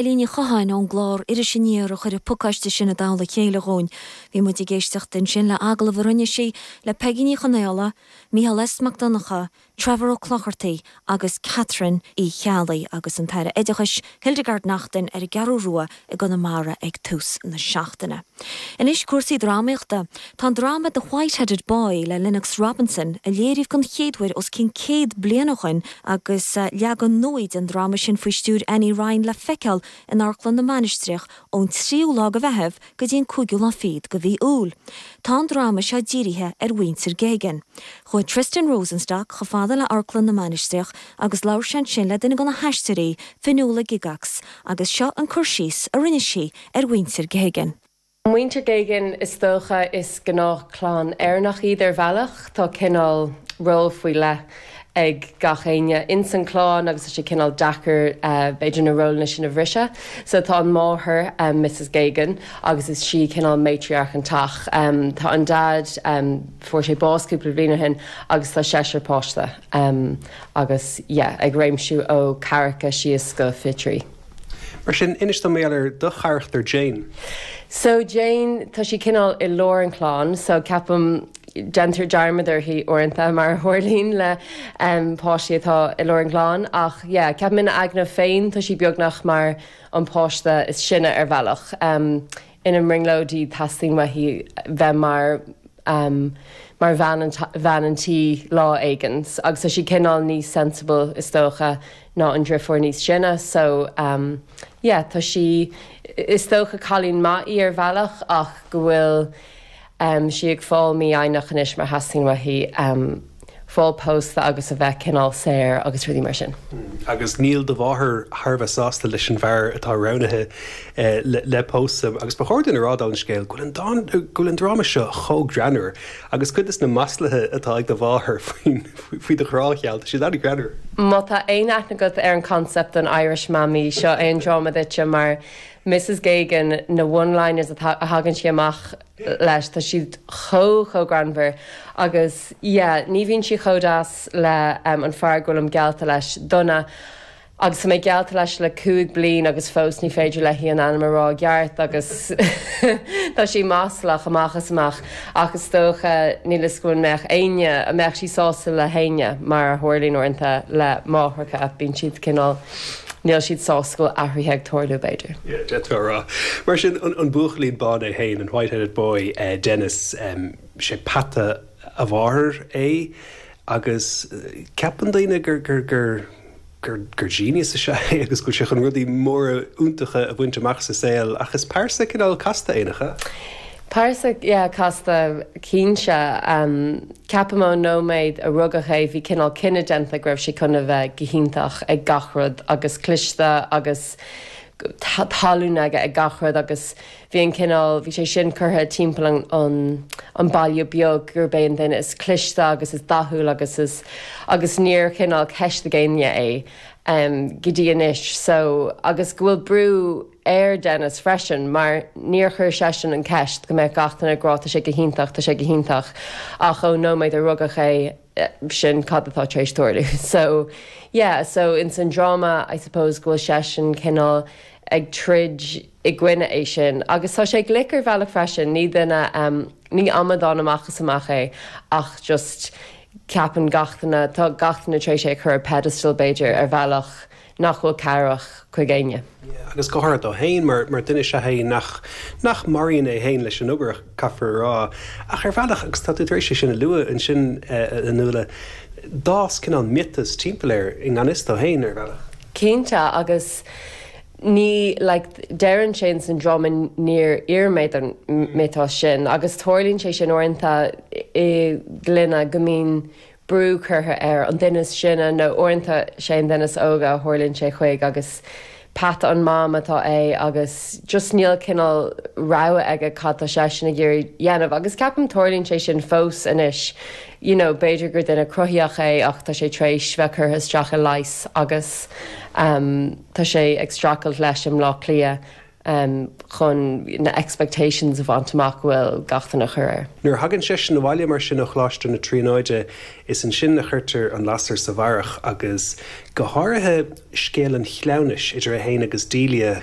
Eilín Ní Chatháin ón gclár Iris Aniar a chuir an pacáiste sin i dtoll a chéile dhúinn. Bhí muid ag éisteacht ansin le agallamh a rinne sí le Peigí Ní Chonaola, Micheál S Mac Donncha, Trevor Ó Clochartaigh agus Catherine Uí Cheallaigh agus an tAire Oideachais, Hildegarde Naughton ar an gCeathrú Rua i gConamara ag tús na seachtaine. Anois cúrsaí drámaíochta. Tá an dráma The Whiteheaded Boy le Lennox Robinson, a léiríodh den chéaduair os cionn céad bliain ó shoin, Agus leagan nua den dráma sin faoi stiúir Annie Ryan le feiceáil in Amharclann na Mainistreach ón tríú lá de Mheitheamh go dtí an cúigiú lá fichead de mhí Iúil. Tá an dráma seo dírithe ar mhuintir Geoghegan. Chuaigh Tristan Rosenstock chomh fada le Amharclann na Mainistreach agus labhair sé ansin le duine de na haisteoirí, Fionnuala Gygax, agus seo an cur síos a rinne sí ar mhuintir Geoghegan. Muintir Geoghegan is dócha is gnáthchlann Éireannach iad ar bhealach. Tá cineál ról faoi leith ag gach éinne ins an clann agus tá sé cineál deacair b'fhéidir na rólanna sin a bhriseadh. So tá an máthair, Mrs Geoghegan, agus is sí cineál matriarch an teach. Tá an dad, fuair sé bás cúpla bhliain ó shin agus tá seisear páiste agus yeah ag réimsiú ó ceathracha síos go fiche trí. Mar sin, inis dom más ea ar do charachtar Jane. So Jane, tá sí cineál i lár an chlann, so ceapaim déantar dearmad uirthi uaireanta mar a tharlaíonn le páistí atá i lár an chlann, ach yeah, ceapaim ina aigne féin tá sí beagnach mar an páiste is sine ar bhealach. ina brionglóidí teastaíonn uaithi bheith mar mar bhean an tí lá éigin agus tá sí cineál níos sensible is dócha ná an driofúr níos sine so yeah tá sí is dócha cailín maith í ar bhealach ach go bhfuil Em sí ag fáil mífhoighneach anois mar theastaíonn uaithi em fáil pósta agus a bheith cineál saor agus rudaí mar sin. Agus níl do mháthair thar a bheith sásta leis an bhfear atá roghnaithe le pósta. Agus ba chóir dúinn a rá dála an scéil go bhfuil an dán, go bhfuil an dráma seo chomh greannmhar agus cuid de na maslaithe atá ag do mháthair faoin, faoi do ghrá geal, tá siad an-ghreannmhar. Má tá aon aithne agat ar an concept den Irish Mammy, seo é an dráma duitse mar, Mrs Geoghegan, na one-liners atá, a thagann sí amach leis, tá siad chomh, chomh greannmhar agus yeah, ní bhíonn sí chomh deas le em, an fear go bhfuilim geallta leis, Donough, agus tá mé geallta leis le cúig bliain agus fós ní féidir léi an ainm a rá i gceart agus tá sí maslach amach is amach ach is dócha, níl 'fhios agam an mbeadh éinne, an mbeadh sí sásta le héinne mar a tharlaíonn uaireanta le máithreacha, bíonn siad cineál. Níl siad sásta go bhfuil athruithe ag tarlú, b'fhéidir. D'fhéadfá a rá. Mar sin, an buachaillín bán é féin, an white-headed boy, Dennis, sé peata a mháthar é agus ceapann daoine gur genius is ea é agus go bhfuil sé chun rudaí móra iontacha a bhaint amach sa saol ach is pearsa cineál casta é, nach ea? Pearsa, yeah, casta, cinnte. Ceapaim ón nóiméad a rugadh é bhí cineál cinneadh déanta go raibh sé chun a bheith go hiontach ag gach rud agus cliste agus tallann aige ag gach rud agus bhí an cineál, bhí sé sin curtha timpeall an an baile beag gurb é an duine is cliste agus is dathúil agus agus níor chineál ceistigh éinne é go dtí anois so agus go bhfuil brú ar Dennis freisin mar níor chuir seisean an ceist go mbeadh gach duine ag rá tá sé go hiontach, tá sé go hiontach ach ón nóiméad a rugadh é sin cad atá tar éis tarlú. So, yeah, so ins an dráma I suppose go bhfuil seisean cineál ag troid i gcoinne é sin agus tá sé glic ar bhealach freisin, ní duine, em, ní amadán amach is amach é ach just ceapann gach duine, tá gach duine tar éis é a chur ar pedestal b'fhéidir ar bhealach. nach bhfuil cabhrach chuig éinne. agus go háirithe dó fhéin, mar mar duine is ea é nach nach maraíonn é fhéin leis an obair, caithfear a rá. Ach ar bhealach, agus tá tú tar éis é sin a lua ansin, a Nuala, d'fhás cineál miotas timpeall air, i ngan fhios dó fhéin, ar bhealach. Cinnte, agus ní, like, deireann sé in san dráma níor iarr mé don mhiotas sin, agus tarlaíonn sé sin uaireanta i gclainne go mbíonn brú curtha ar an duine is sine nó uaireanta sé an duine is óige a tharlaíonn sé chuig agus peata an Mam atá é agus just níl cineál rogha aige cad tá seisean ag iarraidh a dhéanamh agus ceapaim tarlaíonn sé sin fós anois you know b'fhéidir gur duine cruthaitheach é ach tá sé tar éis bheith curtha isteach i leigheas agus tá sé ag streachailt leis i mBleá Cliath em, chun na expectations a bhaint amach go bhfuil gach duine ag cur air. Nuair a thagann seisean abhaile mar sin ó Choláiste na Tríonóide is ansin a chuirtear an lasair sa bharrach agus go háirithe scéal an chleamhnais idir é féin agus Delia,